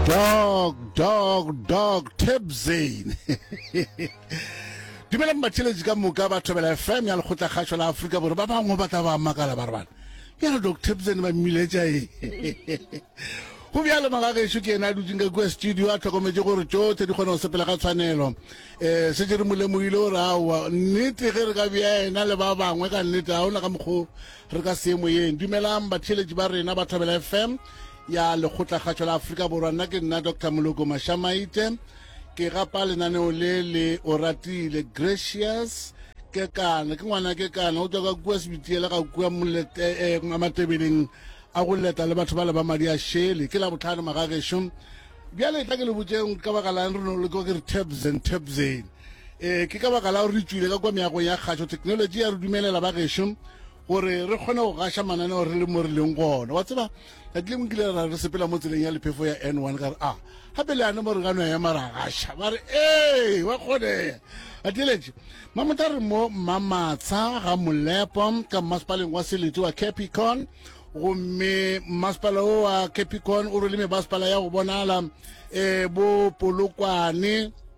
dog dog dog tebzane dumelang batheletši ka moka ba thobela fm ya lekgotla kgašo la aforika bore ba bangwe ba tla ba makala ba re bana yalo dog tebzane ba mmiletša e go bjalo magagešo ke ena a dutseng ka kua studio a tlhokometse gore tsotlhe di kgona go sepela ga tshwanelo um eh, se jere molemoile gore aowa nnete ge re ka bja ena le ba bangwe ka nnete ga ona ka mokgwa re ka seemoyeng dumelang batheeletši ba rena ba thobela fm ya lekgotlagatšo la afrika borwa nna ke nna dr moloko mashamaite ke gapa lenaneo le le o ratile gracious ke kana ke ngwana ke kana o tswa ka kua sebitiele ga kua eh, eh, matebeleng a go leta le batho ba le ba madi a shele ke la botlhano magagešo bjale tla ke le botseng ka baka lang re no le kwa ke re tabs and tabseng Ee, ke ka baka la gore re tšwile ka kwa meagong ya kgašo thekenoloji ya re dumelela ba gešo gore re kgone go gaša mananeo re le mo re leng gona wa tseba tsatsi lengwe kile ra re sepela mo tseleng ya lephefo ya n one ka re a ah, gape le yane mo re ka no ema ra gaša ba re ee wa kgonega a tieletše mamotha re mo mmamatsha ga molepo ka mmasepaleng wa selete wa capicon gomme mmasepala o wa capicon o rwele mebasepala ya go bonala um bo polokwane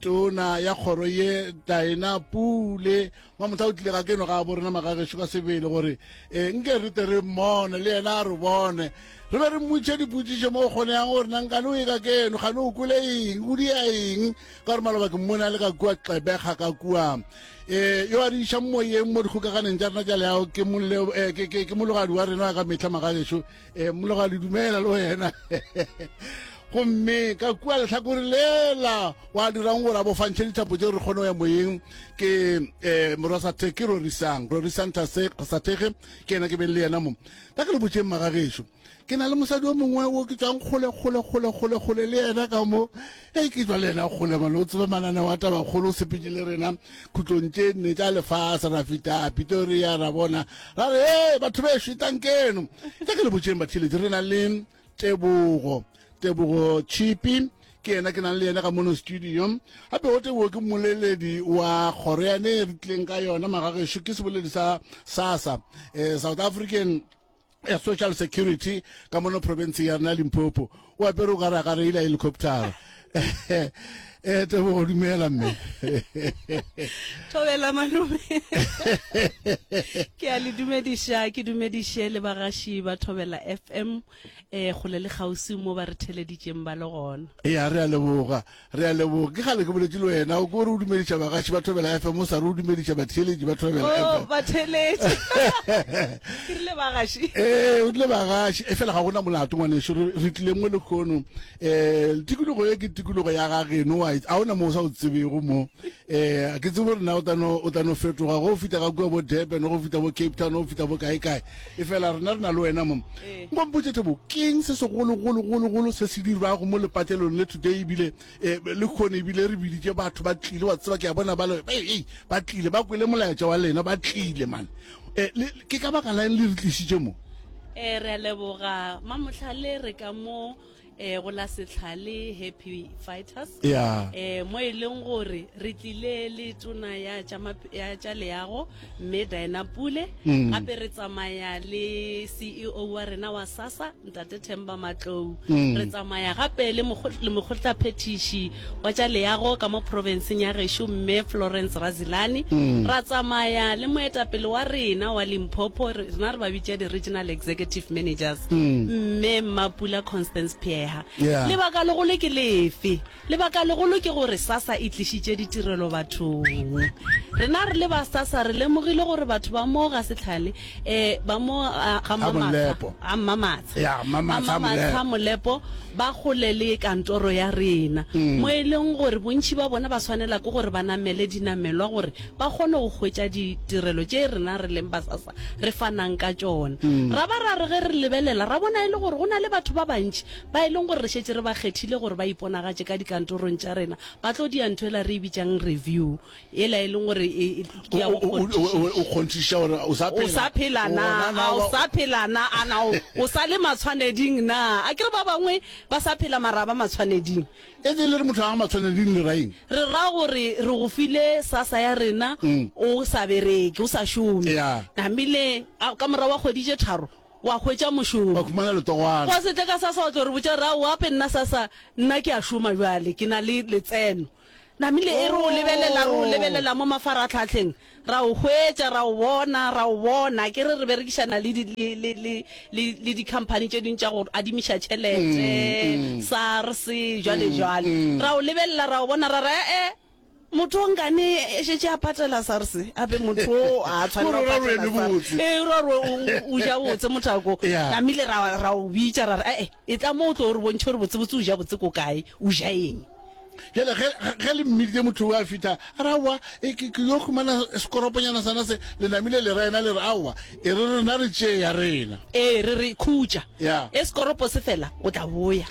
tona ya kgoro ye taena pule mamohla o tlile ga keno ga bo rena magagešo ka sebele gore e nke re te re mmone le yena a re bone re be re mmutše dipotsišo mo o kgoneyang gore nankane o ye ka keno gane o kole eng o dia eng ka gore maloba ke mmone a le ka kua xebega ka kua um yo a re išang moyeng mo dikgokaganeng tša rena tša leago ke mologadi wa rena wa ka metlha magagešo e mologa le dumela le wena gomme ka kua letlhakore lela wa dirang gore a bofantšhe dithapo tse re kgone go ya moyeng ke um eh, morasathe ke rorisang rorisang thasethege ke ena ke beng le yena mo ka ke le botseng magagešo ke na le mosadi o mongwe o ke tswang kgole kgole kgole kgole kgole le yena ka mo Ge ke tswa le yena kgolema le o tseba mananeo a tabakgolo o sepetše le rena khutlong tše nne tša lefase ra feta pitoria ra bona ra re ee batho be šetang keno tša ke le botšeng batheletsi re na le tebogo tebogo chipi ke yena ke nang le yena ka mono studio gape gote boo ke mmoleledi wa kgoro yane re tlileng ka yona magagešo ke seboledi sa sasa um eh, south african ya social security ka mono province ya rena limpopo o apere o kare a ka reila helicoptera eh tebogo dumela mme thobela malome ke a le dumediša ke dumediše le bagaši ba thobela fm um eh, kgole le kgauswi mo ba re theleditšeng ba le gona e a re a leboga Re a leboga. Ke kgale ke boletše le wena o ko re o dumediša bagaši ba Thobela FM o sa re o dumediša batheeletši ba Thobela FM. Oh, batheeletši. Ke rile bagaši. Ee, o rile bagaši. E fela ga gona molato ngwaneso re tlile mo lekgono. Eh, tikologo e ke tikologo ya ga geno wa a ona mo o sa o tsebego mo. Eh, a ke tsebo rena o tano o tano fetoga go fita ga kua bo Durban go fita bo Cape Town go fita bo kae kae e fela rena rena le wena mo eh. ngo mpotse thabo keng se segolo golo golo golo se se dirwa go mo lepatelong le today bile eh, le khone bile re biditse batho ba tlile wa tseba ke ya bona ba le ei ba tlile ba kwele molaetsa wa lena ba tlile man eh, ke ka baka la le re tlisitse mo eh re a leboga mamotlhale re ka mo eh go la setlhale happy fighters yeah. eh mo e leng gore re tlile le tona ya tša leago mme diana pule mm. gape re tsamaya le ceo wa rena wa sasa ntate themba matlou mm. re tsamaya gape le mokgotlaphethiši wa tša leago ka mo profenseng ya gešo Mme Florence Razilani, ra tsamaya le moetapele wa rena wa Limpopo, rena re ba bitša di-Regional Executive Managers, Mme Mmapula Constance Pheha. Lebaka legolo ke lefe? Lebaka legolo ke gore SASSA e tlišitše ditirelo bathong. Rena re le ba SASSA re lemogile gore batho ba mo ga Setlhale eh ba mo ah, ga Ga Molepo. mamatsha a mmamatsha Ya, Mmamatsha a Mmamatsha molepo ba gole le kantoro ya rena Mm. mo e leng gore bontšhi ba bona ba swanela ke gore ba namele dinamelwa gore ba kgone go hwetša ditirelo tše rena re leng basasa re fanang ka tšona Mm. ra ba ra re ge re lebelela ra bona e le gore go na le batho ba bantši ba e leng gore re šetse re ba kgethile gore ba iponagatše ka dikantorong tša rena ba tlo dia ntho e la re e bitsang review yela e leng gore e ke ya go o kgonthiša gore o sa phela o sa phela na a o sa phela na a na o sa le matshwaneding na a ke re ba bangwe ba sa phela mara ba matshwaneding e le re motho a matshwaneding le raeng re ra gore re go file sasa ya rena mm. o sa bereke o sa šome namile ka mora wa kgwedi tše tharo wa hwetša mošomo wa khumana letogwana kwa setle ka sasa wa tlo re botša ra o ape nna sasa nna ke a šoma jwale ke na le letseno Namile e re o lebelela, re o lebelela mo mafaratlhatlheng, ra o hwetša, ra o bona, ra o bona. Ke re re berekišana le di, le, le, le, le, le di-company tše dingwe tša go adimiša tšhelete, SARS, jwale jwale. Ra o lebelela, ra o bona, ra re, e-e, motho o nkane e šetše a patela SARS, a be motho o a tshwanela go patela SARS. E, e ra gore o, o ja botse mothako. Namile ra, ra o bitša, ra re, e-e, e tla mo o tlo o re bontšhe gore botsebotse o ja botse ko kae, o ja eng. jale ge le mmiditse motho o a fitha a re aowa e, ke yo humana sekoroponyana sana se le namile le rena le re aowa e re rena re tšeya rena ee re re khutša e sekoropo se fela o tla boya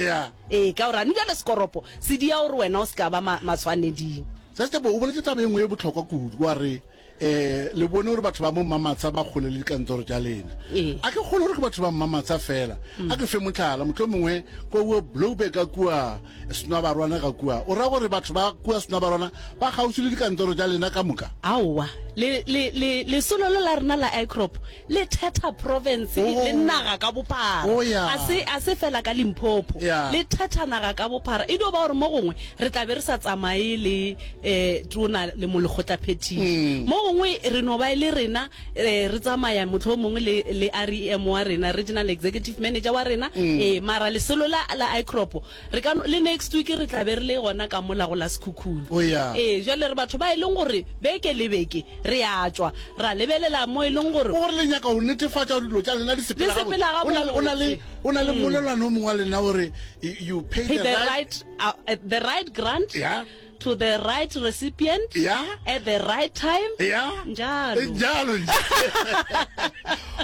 ee ka gore a ne jale sekoropo se dia gore wena o se ka ba maswaneding sesebo o boletse taba e nngwe e botlhokwa kudu wa re Eh, le bone gore batho ba mo mmamatsa ba kgole le dikantoro tša lena Ee. a ke kgone gore ke batho ba mmamatsa fela a ke fe motlhala motlho mongwe ko wo blowback ka kua senwabarwana ka kua o ra gore batho ba kua senwabarwana ba kgauswi le dikantoro tša lena ka moka aowa le- le- le- lesolo le la rena la icrop le thetha province oh. le naga ka bophara oh, yeah. a se a se fela ka limphopho yeah. le thetha naga ka bophara e dio ba gore mo gongwe re tla be re sa tsamaye le eh tona le molekgotla phetiso mm. mo gongwe re no ba e le rena eh, re tsamaya motlho mongwe le le REM wa rena regional executive manager wa rena mm. eh mara le selo la la icrop Re ka no, le next week re tla be re le gona ka mola go la Sekhukhune. O ya. Ee, bjale re batho ba e leng gore beke le beke re ya tšwa ra lebelela mo e leng gore. Ke gore le nyaka go netefatša gore dilo tša lena di sepela gabotse. Di sepela gabotse. O na le, o na le, o na le mmolelwane o mongwe wa lena o re, you pay the right. The right, uh, the right grant. Yeah. To the right recipient. Yeah. At the right time. Yeah. Njalo. Njalo nje.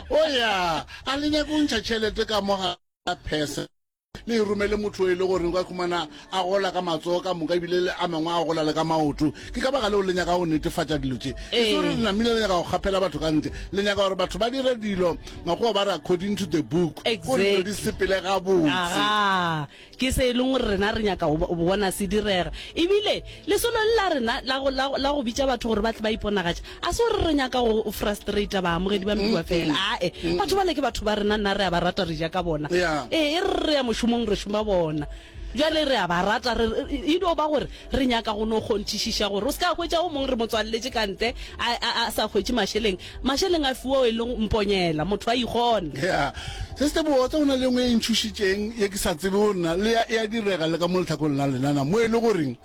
O ya. A le nyaka go ntšha tšhelete ka mo ga phese. le e romele motho e le gore o ka khumana a gola ka matsogo ka moka ebile le a mangwe a gola le ka maoto ke ka baka leo le nyaka go netefatša dilo tše e se gore le namile le nyaka go kgaphela batho ka ntle le nyaka gore batho ba dire dilo makgowa ba re according to the book ko dilo di sepele ga botse ke se e leng gore rena re nyaka go bona se direga ebile lesolo le la rena la go bitša batho gore ba tle ba iponagatša A se gore re nyaka go frustrata baamogedi ba meduwa fela. Ae, batho bale ke batho ba rena, nna re a ba rata, re ja ka bona. Ee, e re re ya mošomong re šoma bona. Bjale re a ba rata, re, e no ba gore re nyaka go no kgonthišiša gore o se ka hwetša o mongwe re mo tswalletše ka ntle, a, a, a sa hwetše mašeleng. Mašeleng a fiwa o e lego mponyela, motho a ikgona. Ya, se se botse, go na le ye nngwe e ntšhošitšeng ye ke sa tsebego nna, le ya, ya direga le ka mo lehlakong la lena na, mo e le gore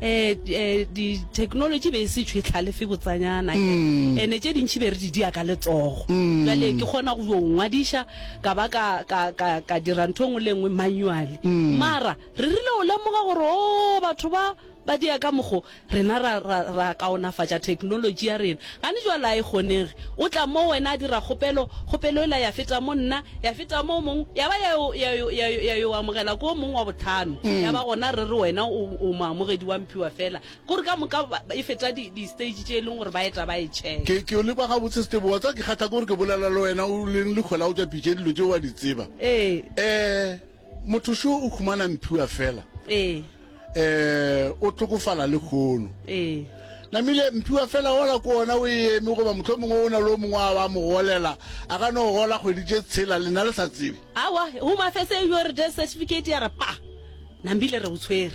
eh, eh, di-technology be e se tšhwetlhalefe botsanyana mm. ene tše dintšhi be re di dia ka letsogo mm. jale ke kgona go yo ngwadiša ka ba ka dira ntho ngwe le nngwe manually mm. mara re rile o lemoga gore o oh, batho ba ba dia ka mogo rena ra kaonafatša technology ya rena Gane jwale a e kgonege. O tla moo wena a dira kgopelo, kgopelo yela ya feta mo nna, ya feta mo o mongwe, ya ba ya yo, ya yo, ya yo, ya yo amogela ko o mongwe wa botlhano, ya ba gona re re wena o, o moamogedi wa mphiwa fela. K'ore ka moka ba, e feta di, di-stage tše e leng gore ba eta ba e check. Ke, ke yo leba gabotse, Stebo. Wa tseba ke kgatha k'ore ke bolela le wena, o leng le kgwela o tša pitša dilo tšeo wa di tseba. Ee. Ee. motho šo o khumana mphiwa fela ee eh o tlhokofala le khono ee namile mphiwa fela ola ko ona o eme goba motlho mongwe o na le o mongwe a wa mo golela a ka no gola kgwedi tše tshela lena le sa tsebe awa home affairs e yo re death certificate ya re pa nambile re o tshwere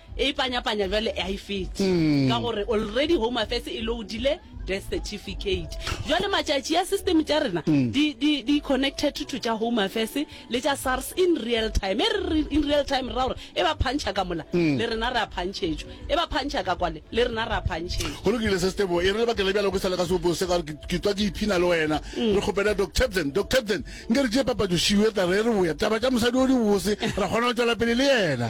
E ipanyapanya jwale ha e fete ka gore already Home Affairs e loadile death certificate. Jwale matšatši a system tša rena di di di connected to tša Home Affairs le tša SARS in real time. E re in real time ra gore e ba phantšha ka mola le rena re a phantšhetšwa, e ba phantšha ka kwale le rena re a phantšhetšwa. Go lokile se Stebo, e re lebaka le bjalo ke sa le ka sebopo se ka gore ke tswa ke iphina le wena. Re kgopela Doc Tabson, Doc Tabson nke re tšee papatšo šiu e tla re e re boya taba tša mosadi o di bose ra kgona go tšwela pele le yena.